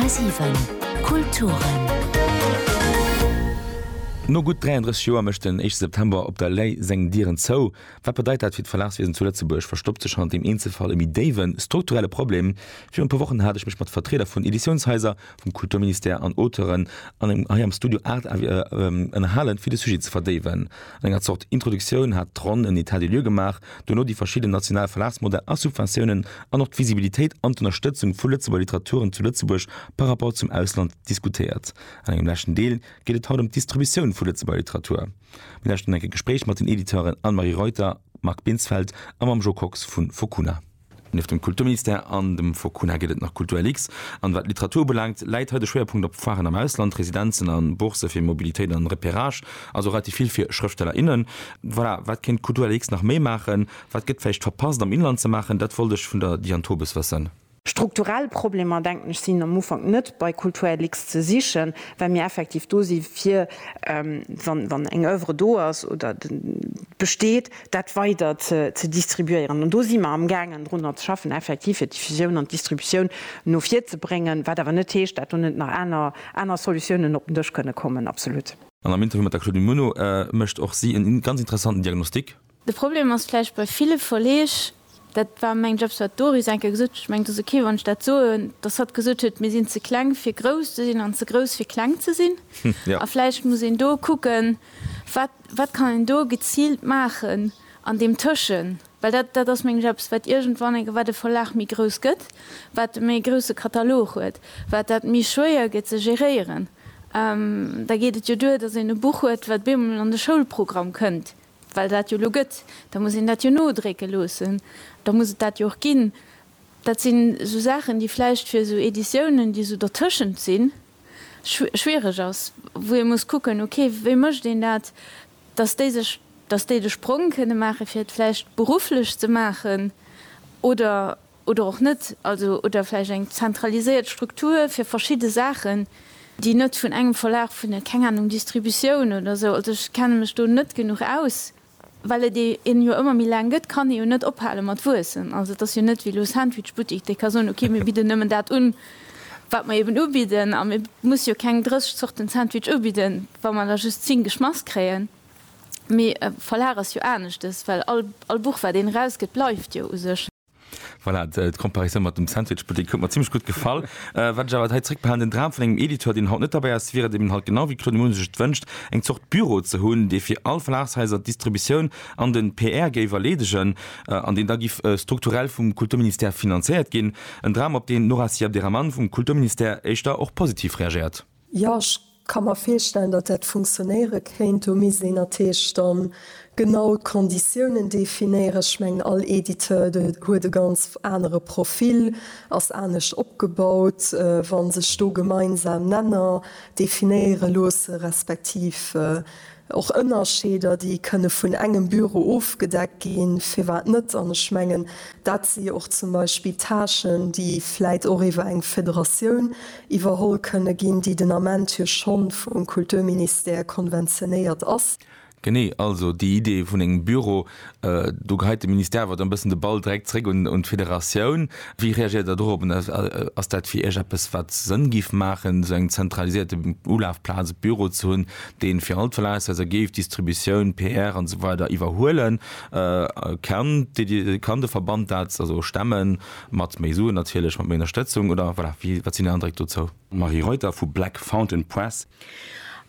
10,7 Kulturen. No gutt 33 Joer mécht den éischte September op der Lay seng Dieren zou. Wat bedeit dat fir d'Verlagswiesen zu Lëtzebuerg? Verstoppt sech hannert deem Eenzelfall e méi déiwe strukturelle Problem? Virun e puer Wochen hat ech mech mat Vertrieder vun Editiounshaiser vum Kulturministère an Auteuren an engem hei am Studio Art Avis ënnerhalen, fir de Sujet ze verdéiwen. An enger Zort Introduktioun hat d'Ronn en Etat des lieux gemaach, duerno déi verschidden national Verlagsmodell a Subventiounen an och d'Visibilitéit an d'Ënnerstëtzung vu Lëtzebuerger Literaturen zu Lëtzebuerg par rapport zum Ausland diskutéiert. An engem leschten Deel geet et haut ëm d'Distributioun vu Lëtzebuerger Literatur. Mir lauschten enk e Gespréich mat den Editeuren Anne-Marie Reuter, Marc Binsfeld a mam Jo Kox vu Fokuna. Nieft dem Kulturministère an dem Focuna gëtt et nach Kultur-LX. An wat d'Literatur ubelaangt, läit hei de Schwéierpunkt op Foiren am Ausland, Residenzen a Bourse fir Mobilitéit an Repérage, also relativ vill fir Schrëftsteller, innen. Voilà, wat kéint d'Kultur-LX nach méi maachen? Wat gëtt vläicht verpasst am Inland ze maachen? Dat wollt ech vun der Diane Tobes wëssen. Strukturell Problemer, denken ech, sinn am Ufank net bei Kultur-LX ze sichen, well mir effektiv do si fir, wann eng Oeuvre do ass oder besteet, dat weider ze distribuéieren. An do si mer amgaangen drunner ze schaffen effektiv, fir d'Diffusioun an d'Distributioun no vir ze bréngen, wat awer net heescht, dat do net nach aner Solutiounen op den Dësch kënne kommen. Absolut. An am Interview mat der Claudine Muno mécht och si en ganz interessanten Diagnostic. De Problem ass vläicht bei ville Verleeg, Dat war meng Jobs, huet d'Doris eng Kéier gesot. Ech mengen, et ass ok, wann ech dat soen, dass hatt gesot huet, mir sinn ze kleng, fir grouss ze sinn an ze grouss, fir kleng ze sinn. A vläicht muss een do kucken, wat, wat kann een do geziilt maachen an deem Tëschen. Well dat, dat ass meng Jobs, wat iergendwann eng, wat e Verlag méi grouss gëtt, wat e méi grousse Katalog huet, wat dat méi schwéier gëtt ze geréieren. Da geet et jo duer, dass een e Buch huet, wat bemol an de Schoulprogramm kënnt, Well dat jo elo gëtt, da muss een dat jo nodrécke loossen, da muss et dat jo och ginn. Dat sinn esou Saachen, déi vläicht fir esou Editiounen, déi esou dertëschent sinn, schwiereg ass, wou ee muss kucken, ok, wéi mécht een dat, dass déi sech, dass déi de Sprong kënne maachen, fir et vläicht berufflech ze maachen oder. oder och net, also oder vläicht eng zentraliséiert Struktur fir verschidde Saachen, déi net vun engem Verlag, vun der, keng Ahnung, Distributioun oder esou, also ech kenne mech do net genuch aus. Well et ee en jo ëmmer méi laang gëtt, kann ee jo net ophale mat wuessen. Also et ass jo net wéi elo Sandwichbuttik, dee ka soen, okay, mir bidden nëmmen dat un, wat mer eeben ubidden, a mir musse jo keng 30 Zorten Sandwich ubidden, wa mer der just 10 geschmass kréien. Mee e Verlag ass jo aneschtes, well all Buch, wat een erausgëtt, bleift jo u sech. Voilà, d'Comparisou mat dem Sandwichbuttek huet mer zimmlech gutt gefall. Äh, wat ech awer hei zréckbehalen, den Dram vun engem Editeur, deen haut net derbäi ass, wier et eben halt genau wéi Claude Muno sech et wënscht, eng Zort Büro ze hunn, dee fir all Verlagshaiser d'Distributioun an den PR géif erleedegen, an deen da giff strukturell vum Kulturministère finanzéiert ginn. En Dram, op deen d'Nora Syed-Abderrahmane vum Kulturministère éischter och positiv reagéiert. Jo, ech ka mer virstellen, datt dat funktionéiere kéint. Do misst een natierlech da genau d'Konditiounen definéieren. Ech mengen, all Editeur huet e ganz anere Profil, ass anescht opgebaut. Wa sech do gemeinsam Nenner definéiere loosse respektiv Och Ënnerscheeder, déi kënne vun engem Büro ofgedeckt ginn, firwat net? An ech mengen, dat si jo och zum Beispill Tâchen, déi vläit och iwwer eng Federatioun iwwerholl kënne ginn, déi den Ament jo scho vum Kulturministère konventionéiert ass. Genee, also déi Idee vun engem Büro, Do geheit de Ministère awer dann e bëssen de Ball direkt zréck un d'Federatioun. Wéi reagéiert Der dorop? Ass dat fir Iech eppes, wat Sënn géif maachen, esou eng zentralisierte Ulafplaz, e Büro ze hunn, dee fir all d'Verlagshaiser géif d'Distributioun, PR an esou weider iwwerhuelen? Kann de Verband dat stemmen, mat méi Suen natierlech, mat méi Ënnerstëtzung oder, voilà, wat sinn Är Andréck dozou? Marie Reuter vu Black Fountain Press.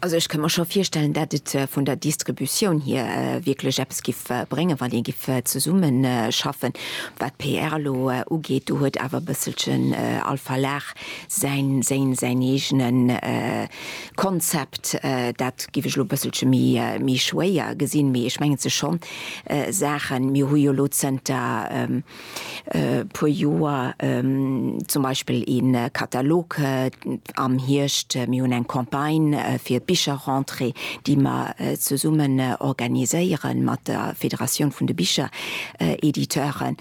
Also ech kënn mer scho virstellen, dat et vun der Distributioun hier wierklech eppes giff bréngen, wann ee giff zesummen schaffen. Wat d'PR elo ugeet, do huet awer e bësselchen all Verlag säin säin eegene Konzept. Dat giff ech elo e bësselche méi schwéier gesinn, mee ech mengen, et si scho Saachen, mir hu jo elo zënter, puer Joer zum Beispill ee Katalog am Hierscht, mir hunn eng Campagne fir d'Bicherrentrée, déi mer zesummen organiséiere mat der Federatioun vun de Bicherediteuren.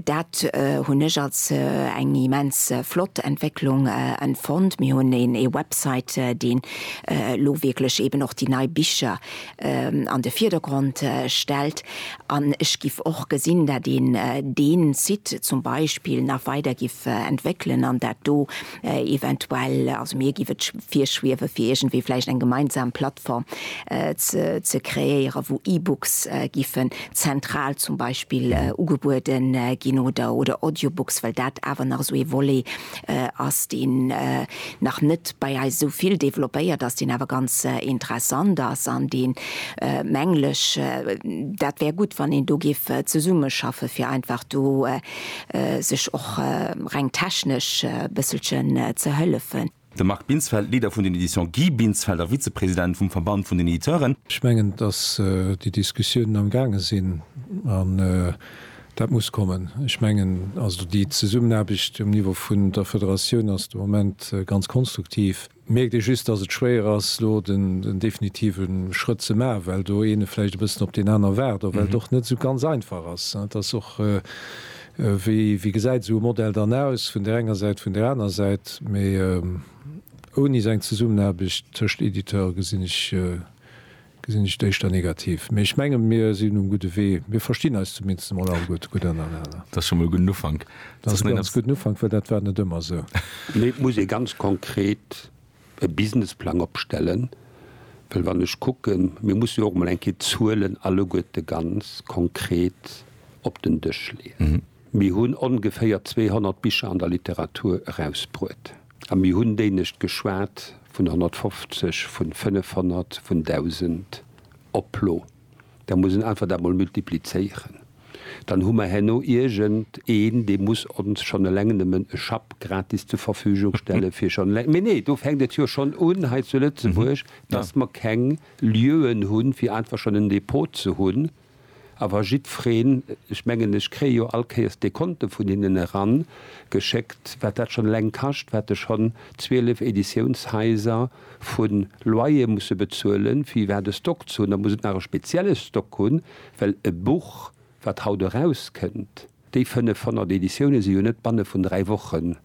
Dat hunn ech als eng immens flott Entwécklung empfonnt. Mir hunn ee Website, deen elo wierklech eeben och déi nei Bicher an de Virdergrond stellt. An ech giff och gesinn, dat een deen Site zum Beispill nach weider giff entwéckelen an dat do eventuell, also mir giff et virschwiewen, fir iergendwéi vläicht eng gemeinsam Plattform ze kreéieren, wou E-Books giffen zentral zum Beispill ugebueden ginn oder Audiobooks, well dat awer nach esou ee Volet ass deen nach net bei eis esou vill développéiert ass, deen awer ganz interessant ass an dee mengl ech, dat wär gutt, wann een do géif zesummeschaffe fir einfach do sech och reng technesch e bësselchen ze hëllefen. De Marc Binsfeld, Leader vun den Editions Guy Binsfeld a Vizepresident vum Verband vun den Editeuren. Ech mengen, datt déi Diskussiounen amgaange sinn an Dat muss kommen. Ech mengen also déi Zesummenaarbecht um Niveau vun der Federatioun ass de Moment ganz konstruktiv. Mierkt ee just, dass et schwéier ass elo den definitive Schrëtt ze maachen, well do eene vläicht e bëssen op deen aner waart, a well et och net esou ganz einfach ass. Et ass och, wéi gesäit esou e Modell dann aus, vun där enger Säit, vun där aner Säit. Mee ouni esou eng Zesummenaarbecht tëscht Editeure gesinn ech Gesinn ech éischter negativ. Mee ech mengen, mir sinn um gudde Wee. Mir verstinn eis zumindest emol all gutt, gutt aneinaner. Dat ass scho mol e gudden Ufank. Dat ass e ganz gudden Ufank, well dat war net ëmmer esou. Mee et muss ee ganz konkret e Businessplang opstellen. Well wann ech kucken, mir mussen jo och emol eng Kéier d'Zuelen alleguerte ganz konkret op den Dësch leeën. Mir hunn ongeféier 200 Bicher an der Literatur erausbruet. A mir hunn déinescht geschwat vun 150, vun 500, vun 1.000 op d'Plo. Da muss en einfach dat mol multiplizéieren. Dann hu mer herno iergend een, dee muss ons schonn eleng nëmmen e Schapp gratis zur Verfügung stelle fir schonn eleng, mee nee, do fänkt et jo schonn un hei zu Lëtzebuerg, dass mer keng Lieuen hunn, fir einfach schonn en Depot ze hunn. Awer jiddfreen, ech mengen, ech kréie jo all Kéiers d'Dekonte vun hinnen eran geschéckt, wat dat schonn eleng kascht, wat ech schonn 12 Editiounshaiser vu Loyer musse bezuelen, fir iwwerhaapt e Stock ze hunn. Da muss et nach e spezielle Stock hunn, well e Buch, wat haut erauskënnt, Déi 500 Editioune si jo net banne vun dräi Wochen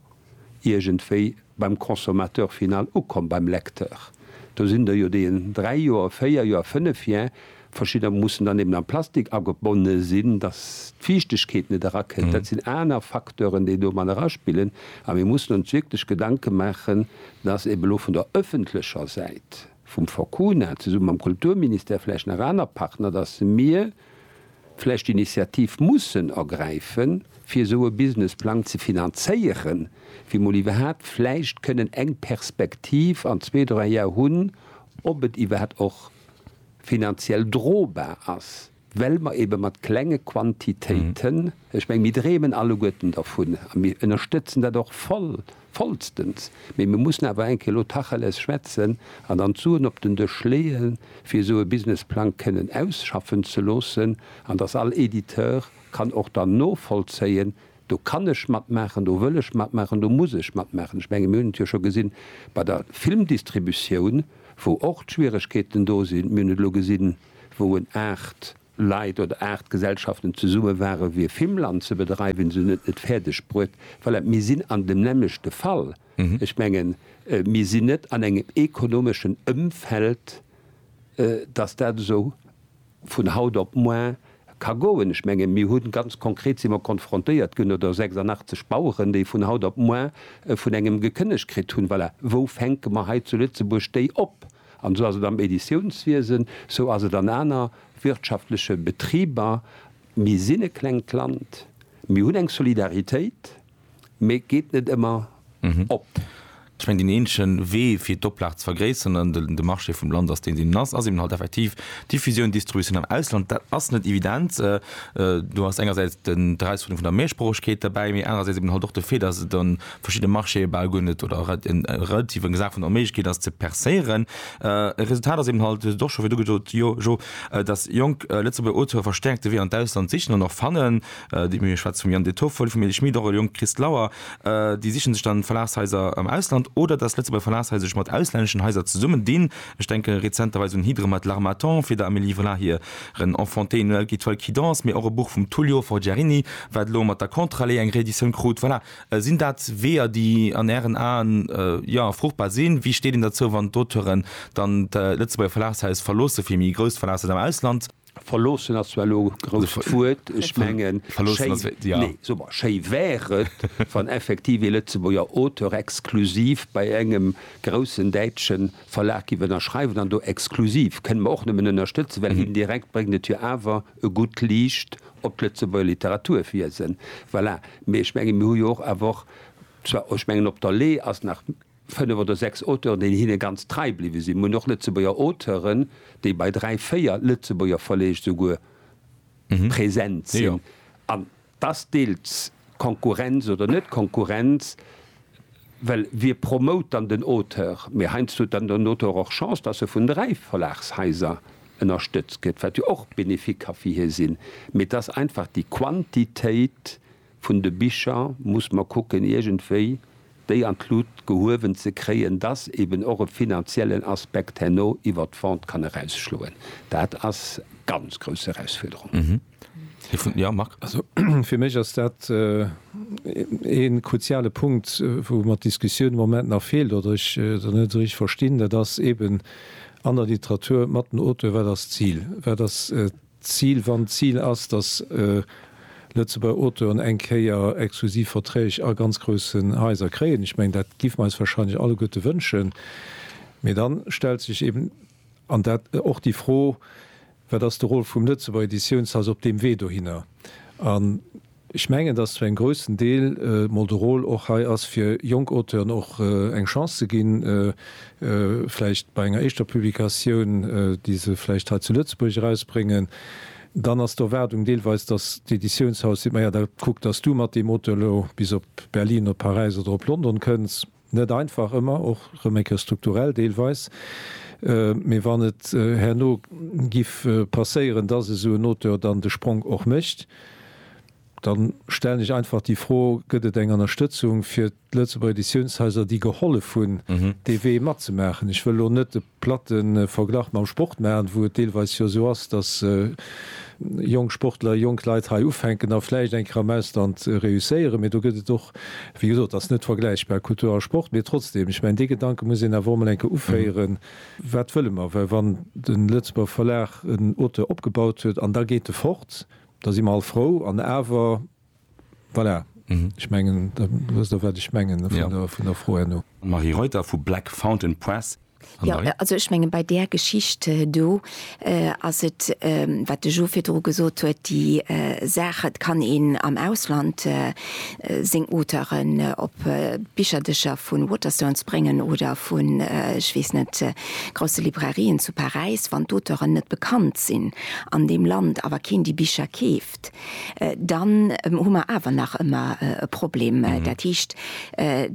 iergendwéi beim Consommateur final ukomm, beim Lecteur. Do sinn der jo, déi en dräi Joer, véier Joer, fënnef Joer, verschidder mussen dann eben am Plastik agebonne sinn, datt d'Fiichtegkeet net erakënnt. Dat sinn aner Facteuren, déi do mat eraspillen. A mir mussen ons wierklech Gedanke maachen, datt eben elo vun der öffentlecher Säit, vum Forcuna, zesumme mam Kulturministère, vläicht nach aner Partner, datt mir, vläicht d'Initiativ mussen ergräifen, fir esou e Businessplang ze finanzéieren, fir emol iwwerhaapt vläicht kënnen eng Perspektiv an zwee, dräi Jar hunn, ob et iwwerhaapt och finanziell drobar ass, well mer eebe mat klenge Quantitéiten, ech meng, mir dreemen alleguerten dervun a mir ënnerstëtzen dat och voll, Vollstens! Mee mir mussen awer eng Kéier elo Tacheles schwätzen an dann d'Suen op den Dësch leeën, fir esou e Businessplang kënnen ausschaffen ze loossen an dass all Editeur kann och dann novollzéien, Do kann ech matmaachen, do wëll ech matmaachen, do muss ech matmaachen. Ech menge mir hunn et jo scho gesinn bei der Filmdistributioun, wou och d'Schwieregkeeten do sinn. Mir hunn et elo gesinn, wou en 8. Leit oder Art Gesellschaften zesumme ware fir Fimmland ze bedreiwen, se hunn et net fäerdeg bruet. Voilà, mir sinn an dem nämmlechte Fall. Ech mengen, mir sinn net an engem ekonomeschen Ëmfeld, datt dat esou vun haut op moar ka goen. Ech mengen, mir hunn, ganz konkret si mer konfrontéiert ginn, oder 86 Baueren, déi vun haut op moar vun engem gekënnegt kritt hunn. Voilà, wou fänke mer hei zu Lëtzebuerg déi op? An esou ass et am Editiounswiesen, esou ass et an aner wirtschaftleche Betriber. Mir sinn e klengt Land, mir hunn eng Solidaritéit, mä et geet net ëmmer op. Ech mengen, deen eenzegen Wee fir d'Oplag ze vergréisseren an de Marché vum Land ass deen, deen en ass, ass eben halt effektiv Diffusioun, Distributioun am Ausland. Dat ass net evident. Do ass engersäits d'Erausfuerderung vun der Mehrsproochegkeet derbäi, mä anerersäits eben halt och de Fait, dass et an verschidde Marchéë bal guer net oder en relativ eng Saach vun der Onméiglechkeet ass ze percéieren. E Resultat ass eben halt do scho, wéi du gesot, jo, jo, datt jonk Lëtzebuerger Auteure verstäerkt de Wee an d'Ausland sichen an och fannen. Déi mir schwätze vum Yann De Toffoli, vum Elie Schmit, och e jonke Christ Lauer, déi siche sech dann Verlagshaiser am Ausland oder datt Lëtzebuerger Verlagshaiser sech mat auslänneschen Haiser zesummen dinn. Ech denke rezenterweis un Hydre mat L'Harmattan fir der Amélie Vla hiren Enfanté, Noël qui toile qui danse, mee och e Buch vum Tullio Forgiarini, wat elo mat der Contre-allée eng Reeditioun krut. Voilà, Sinn dat Weeër, déi an Ären Aen, jo, fruchtbar sinn? Wéi steet een derzou, wann d'Auteuren dann d'Lëtzebuerger Verlagshaus verloossen, fir méi grousst Verlagshaus am Ausland? Verloossen ass zwar elo e grousst Wuert. Ech mengen, schéi, nee, soe mer, schéi wär et, wann effektiv ee Lëtzebuerger Auteur exklusiv bei engem groussen däitsche Verlag giff ënnerschreiwen an do exklusiv kënne mer och nëmmen ënnerstëtzen, well indirekt bréngt et jo awer e gutt Liicht op d'Lëtzebuerger Literaturwiesen. Voilà. Mee ech mengen, mir hu jo och awer och, zwar, ech mengen op der Lee ass nach fënnef oder sechs Auteuren, déi hinne ganz trei bliwwe sinn. Mir hunn och Lëtzebuerger Auteuren, déi bei dräi, véier Lëtzebuerger Verleeg souguer present sinn. Ass deels Konkurrenz oder net Konkurrenz, well wie promote dann den Auteur? Mee heiansdo huet dann den Auteur och Chance, dass e vun dräi Verlagshaiser ënnerstëtzt gëtt, wat jo och bénéfique ka fir hie sinn. Mee et ass einfach déi Quantitéit vun de Bicher, muss mer kucken iergendwéi, déi an d'Lut gehuewen ze kréien, dass eben och e finanziellen Aspekt herno iwwert d'Vente kann erausschloen. Dat ass ganz grouss Erausfuerderung. Ja, Marc. Also fir mech ass dat ee kruziale Punkt, wou mer d'Diskussioun de Moment nach feelt oder ech se net esou richteg verstinn. Dat ass eben an der Literatur mat den Auteuren, Wat ass d'Zil? Wat ass D'Zil, wann d'Zil ass, dass Lëtzebuerger Auteuren eng Kéier exklusiv Verträg a ganz groussen Haiser kréien, ech mengen, dat géife mer eis wahrscheinlech alleguerte wënschen, mee dann stellt sech eben, an dat och, déi Fro, Wat ass de Rôle vum Lëtzebuerger Editiounshaus op deem Wee dohinner? Ech mengen, dass zu engem groussen Deel mol de Rôle och hei ass, fir jonk Auteuren och eng Chance ze ginn, vläicht bei enger éischter Publikatioun, déi se vläicht hei zu Lëtzebuerg erausbréngen. Dann ass d'Erwaardung deelweis, dass d'Editiounshaus seet, Maja, da kuck, dass du mat deem Auteur elo bis op Berlin, op Paräis oder op London kënns. Net einfach ëmmer, och rëm eng Kéier strukturell deelweis, mee wann et herno giff passéieren, dass esou en Auteur dann de Spronk och mécht, dann stellen ech einfach déi Fro, gëtt et eng Ënnerstëtzung fir d'Lëtzebuerger Editiounshaiser, déi gehollef hunn, dee Wee matzemaachen? Ech wëll elo net de. platte Verglach mam Sport maachen, wou et deelweis jo esou ass, dass jonk Sportler, jonk Leit hei ufänken a vläicht eng Kéier am Ausland reusséieren. Mee do gëtt et och, wéi gesot, et ass net vergläichbar, Kultur a Sport. Mee trotzdem, ech mengen, dee Gedanke muss een awer och emol eng Kéier uféieren, Wat wëlle mer? Well wann de Lëtzebuerger Verlag en Auteur opgebaut huet an da geet e fort, da si mer all frou. An awer. Voilà. Ech mengen, da wësst Der, wat ech mengen vun der Fro herno. Marie Reuter vu Black Fountain Press. Jo, also ech menge bei där Geschicht do ass et, wat de Jo virdru gesot huet, déi Saach, et kann een am Ausland seng Auteuren op d'Bicherdëscher vu Waterstones bréngen oder vun, ech weess net, grousse Librairien zu Paräis, wann d'Auteuren net bekannt sinn an deem Land, awer keen déi Bicher keef, dann hu mer awer nach ëmmer e Problem. Dat heescht,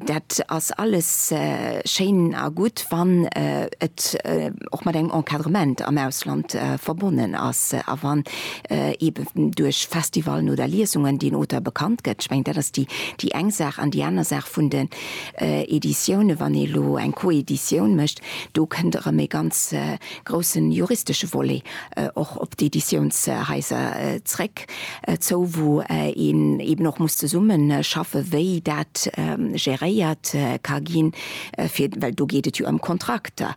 dat ass alles schéin a gutt, wann et och mat engem Encadrement am Ausland verbonnen ass a wann eeben duerch Festivalen oder Liesungen deen Auteur bekannt gëtt. Ech mengen, dat ass déi eng Saach. An déi aner Saach vun den Editiounen, wann ee elo eng Coeditioun mécht, do kënnt erëm e ganz groussen juristesche Volet och op d'Editiounshaiser zréck zou, wou een eben och muss zesumme schaffen, wéi dat geréiert ka ginn, fir well do geet et jo ëm Kontrakter.